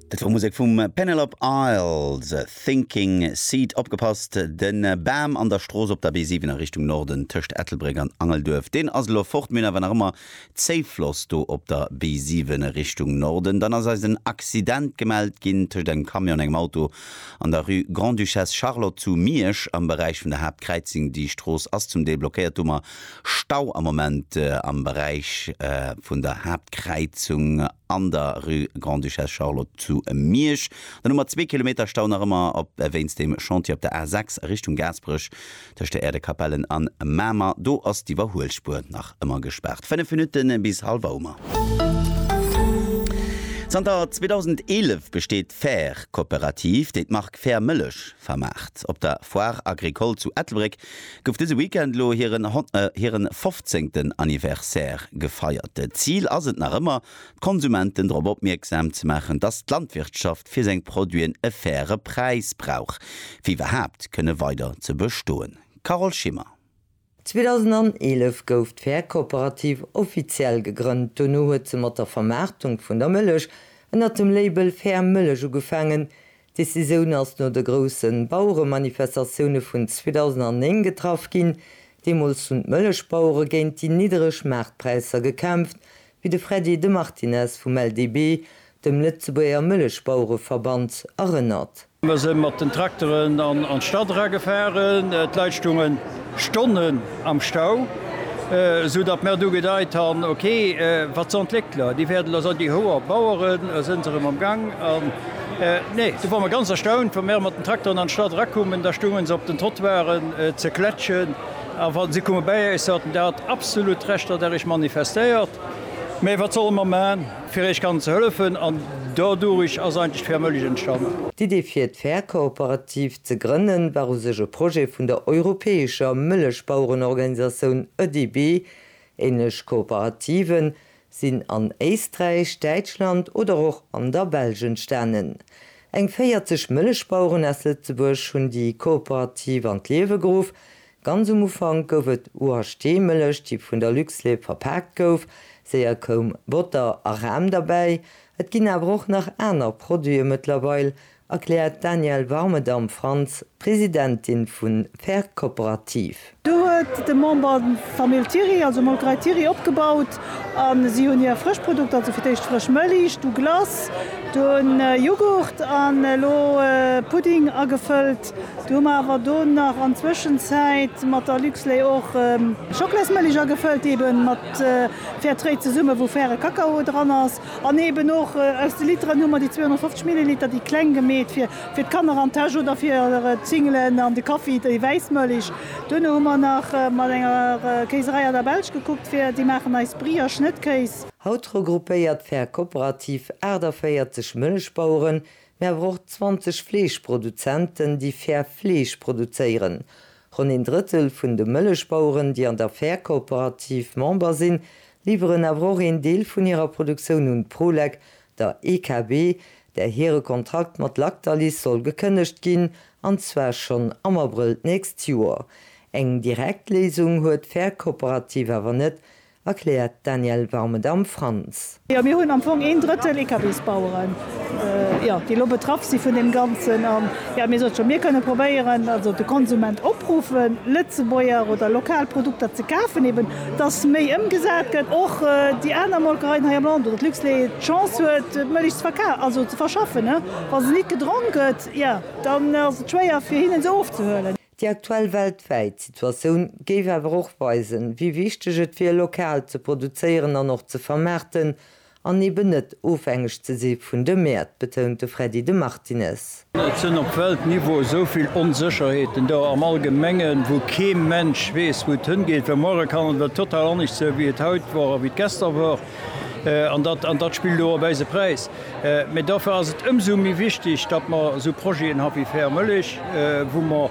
Dat war Musek vum Penelope Isles, Thinking Seat. Opgepasst, de Bam an der Strooss op der B7 a Richtung Norden tëscht Ettelbréck an Angelduerf, deen ass elo fort. Mir hunn awer nach ëmmer Zéifloss do op der B7 Richtung Norden. Dann ass eis en Accident gemellt ginn tëscht engem Camion an engem Auto an der Rue Grand-Duchesse Charlotte zu Miersch am Beräich vun der Haaptkräizing. Déi Strooss ass zum Deel blockéiert, domat Stau am Moment am Beräich vun der Haaptkräizung an der Rue Grande-Duchesse Charlotte zu Miersch. Dann hu mer zwee Kilometer Stau nach ëmmer wéinst dem Chantier op der A 6 a Richtung Gaasperech tëscht der Erdekapellen an Mamer. Do ass d'Iwwerhuelspuer nach ëmmer gespaart. Fënnef Minutte bis hallef Auer. Zanter 2011 besteet d'Fair-Cooperative, déi d'Mark Fair Mëllech vermaacht. Op der Foire Agricole zu Ettelbréck gouf dëse Weekend elo hiren hiren fofzéngten Anniversaire gefeiert. D'Zil ass et nach ëmmer, d'Konsumenten drop opmierksam ze maachen, dass d'Landwirtschaft fir seng Produiten e faire Präis brauch, fir iwwerhaapt kënne weider ze bestoen. Carole Schimmer. 2011 gouf d'Fäerkooperativ offiziell gegrënnt, dono huet se mat der Vermaartung vun der Mëllech ënnert dem Label Fair Mëllech ugefaangen. D'Decisioun ass no de groussen Baueremanifestatioune vun 2009 getraff ginn. Deemools hunn d'Mëllechbauere géint déi niddereg Maartpräisser gekämpft, wéi de Freddy de Martinez vum LDB dem Lëtzebuerger Mëllechbauereverband erënnert. Mer se mat den Trakteren an d'Stad era gefahren. D'Leit stungen Stonnen am Stau, esou datt mer du gedeit han, ok, wat san d'Léckler? Déi wärden der san déi hoer Baueren. Sen se erem am Gang? An nee, du war mer ganz erstaunt, wa mer mat den Trakteren an d'Stad era kummen, da stungen se op den Trottoiren ze klätschen. A wa se kumme bäi äis, haten dat absolut Recht, datt är iech manifestéiert. Mä wat solle mer man? Fir iech kann ze hëllefen an dodurich ass eigentlech d'Fair Mëlich entstannen. D'Idee fir d'Fair Kooperativ ze grënnen war u sech e Projet vun der europäescher Mëllechbauerenorganisatioun ÖDIB. Ähnlech Kooperativen sinn an Éisträich, Däitschland oder och an der Belsch entstanen. Eng 40 Mëllechbaueren aus Lëtzebuerg hunn déi Kooperativ an d'Liewe geruff, Ganz um Ufank gouf et UHT Mëllech déi vun der Luxlait verpaakt gouf, séier koum Botter a Ram derbäi. Et ginn awer och nach aner Produite mëttlerweil, erkläert d'Danièle Warmedam-Franz, Presidentin vun Fair Cooperative. Do huet de Member d'Famill Thiry, also Molkerei Thiry opgebaut a si hunn hir frësch Produkter, also fir d'éischt frësch Mëlich, du Glace, dunn Jughurt an elo Pudding agefëllt. Du hu mer awer do nach an Zwëschenzäit mat der Luxlait och Schocklaismëlich agefëllt, ebe mat Fairtrade zesumme wou faire Kakao dran ass. An eben och aus de Literen hu mer déi 250 Milliliter, déi kleng gemeet fir fir d'Kanner an d'Täsch oder fir d'Singelen an de Kaffi, déi wäiss Mëlich. Duerno hu mer nach mat enger Kéiserei aus der Belsch gekuckt fir, déi maachen eis Brie a Schnëttkéis. Haut regroupéiert d'Fair Cooperative 48 Mëllechbaueren, Mir awer och 20 Fleeschproduzenten, déi fair Fleesch produzéieren. Ronn een Drëttel vun de Mëllechbaueren, déi an der Fair-Kooperativ Member sinn, liwweren awer och een Deel vun hirer Produktioun un d'Prolek, der EKB, där hire Kontrakt mat Lactalis soll gekënnegt ginn, an zwar schonn am Abrëll d'nächst Joer. Eng direkt Léisung huet d'Fair-Kooperativ awer net, erkläert d'Danièle Warmedam. Frantz. Jo, mir hunn am Fong een Drëttel Eekabingsbaueren, jo, déi elo betraff si vun deem Ganzen. An, jo, mir soen et scho, mir kënne probéieren, also de Konsument opruffen, Lëtzebuerger oder lokal Produkter ze kafen, eben dass méi ëmgesat gëtt, och déi aner Molkereien hei am Land oder d'Luxlait d'Chance huet, d'Mëllech ze verka, also ze verschaffen. Wa se nit gedronk gëtt, jo, dann ass et schwéier fir hinnen se ofzehuelen. Déi aktuell weltwäit Situatioun géif awer och weisen, wéi wichteg et wier, lokal ze produzéieren an och ze vermaarten an eben net ofhängeg ze si vun de Mäert, betount de Freddy de Martinez. Et sinn op Weltniveau esou vill Onsécherheeten do am Allgemengen, wou kee Mensch weess, wou et hëngeet, well muere kann et total anescht sinn, wéi et haut wor a wéi et gester wor. An dat spillt elo op eise Präis. Mä dofir ass et ëmsou méi wichtig, datt mer esou Projeten ha wéi Fair Mëllech, wou mer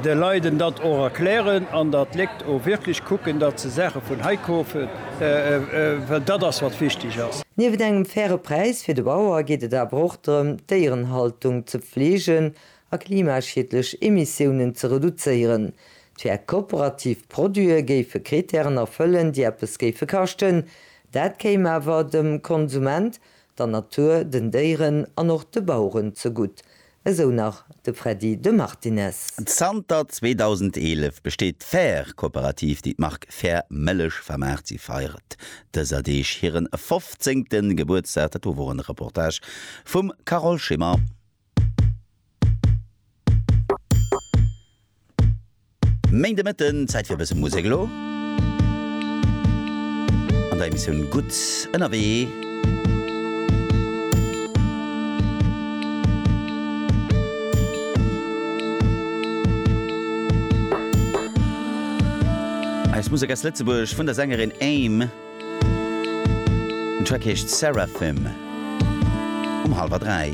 de Leiden dat och erklären an datt d'Léckt och wierklech kucken, datt se Saache vun hei kofen, well dat ass, wat wichtig ass. Niewent engem faire Präis fir de Bauer geet et awer och drëm, d'Déierenhaltung ze pflegen a klimaschiedlech Emissiounen ze reduzéieren. D'fair kooperativ Produite géife Kritären erfëllen, déi eppes géife kaschten. Dat kéim awer dem Konsument, der Natur, den Déieren an och de Baueren zegutt, esou nach de Freddy de Martinez. Zanter 2011 besteet d'fair Kooperativ, déi d'Mark Fair Mëllech vermaacht. Si feiert dëser Deeg hiren fofzéngten Gebuertsdag. Dat wor en Reportage vum Carole Schimmer. Méint de Mëtten, Zäit fir e bësse Musek elo an der Emissioun Gutt ënnerwee. Eis Musek aus Lëtzebuerg vun der Sängerin Aim. Den Track heescht Seraphim um hallwer dräi.